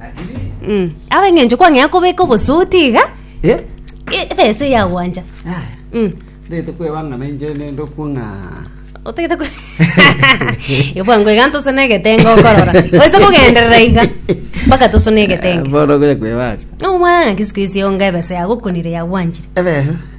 Lakini Mm. Aba eng'encho kwang'ea kobeka obosuti iga eh e- ebesa eyagwancha haya. Mm. Ndete kwebangana inche nende okwong'a. otagete ku ebwango iga ntosone egetenga okorora oise kogenderera iga mpaka tosone egetenga Bono goya kwebanga. omwana ng'aki siku isi onga ebesa yagokunire yagwanchire Ebesa.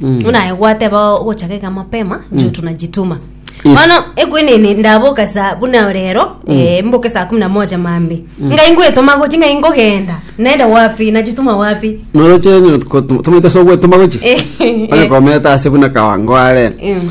buna aye gwateba ogochaka iga mapema njo tunajituma Yes. bono ekwenene ndaboka sa buna rero eh, mboke saa kumi na moja mambi ngai ngwetoma gochi ngai ngogenda naenda wapi najituma wapi noroche tomaite ase ogwetoma gochi Eh, eh. agekometa ase buna kawango are Mm.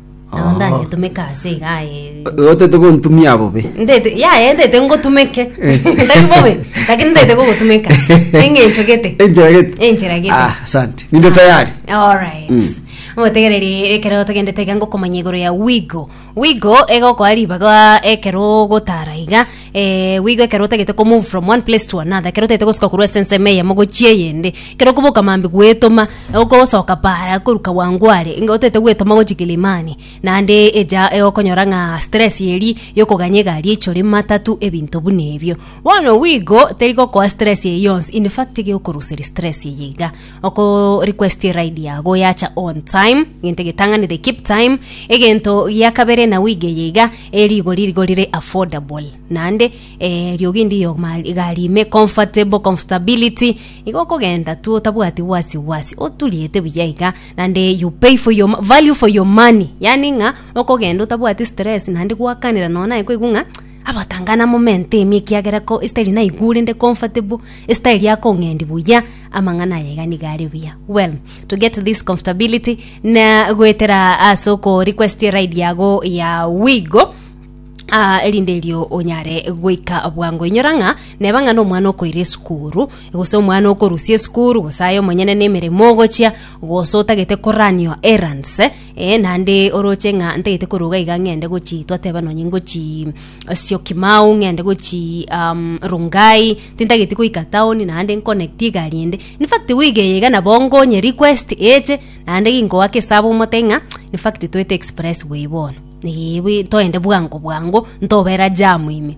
Nabo Oo. ndanyetumeke ase iga aye. Otete gontumia bobe. Ndete, ya, ya, ndete ngotumeke. Tari bobe, lakini ndete gogotumeka. Eng'encho gete. Enchera gete. Enchera gete. Ah, asante. Ninde tayari. Alright. Mm. Motegereri ekero togendete iga ngokomanya igoro ya Wigo. Wigo egokoa ribaga ekero ogotara iga Eh, bw'igo ekero otagete komove from one place to another, ekero otagete gosoka korwa ase ensemo eyemo gochia eyende, ekero okoboka mambia gwetoma, okosoka para korwa Kawangware, inga otagete gwetoma gochia Kilimani, naende echa e- okonyora ng'a stress eria ya okoganya egari eichore, matatu, ebinto buna ebio. Bono bw'igo, teri gokoa stress eyio yonsi, in fact, teiga ekoruseria stress eyio iga. Okorequestie ride yago yacha on time, gento getang'anire keep time. Egento gia kabere na wige yeiga eh, rigori rigo rire affordable. Naende eh, riogi ndiyo ma- egari ime comfortable, comfortability. Igo okogenda tu otabwati wasi wasi, oturiete buya iga, naende you pay for your, value for your money. Yaani ng'a okogenda otabwati stress naende gwakanera nonya naye koigwa ng'a abatang'ana momentemi ekiagera ko esitari naigure nde comfortable, esitari akong'endi buya. amang'ana aye iga nigo are buya well to get this comfortability na goetera ase oko request ride yago ya wigo Ah, erinde erio onyare goika bwango inyora ng'a neba ng'a nomwana okoira esukuru gose omwana okorusia esukuru gose aye omonyene na emeremo ogochia gose otagete koranio errands eh, Ee, naende oroche ng'a ntagete koruga iga ng'ende gochii, twateba nonye ngochii eh, Syokimau, ng'ende gochii um, Rongai, tintageti goika town, naende nconnect egari ende. In fact week eye iga nabo ngonye request eche, naende ginkoaka esabu omote ng'a in fact toete express way bono, ee bwe toende bwango bwango, ntobera jam ime.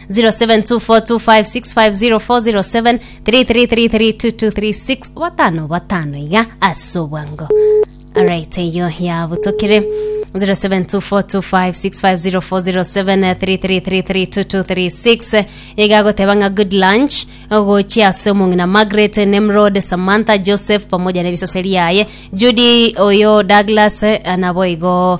0724256507 batano batano iga ase obwango alright eyo yabutokire 0724256507 iga agoteba ng'a good lunch gochia ase omong'ina margaret nemrod samantha joseph pamoja na risase riaye judy oyo douglas eh, nabo igo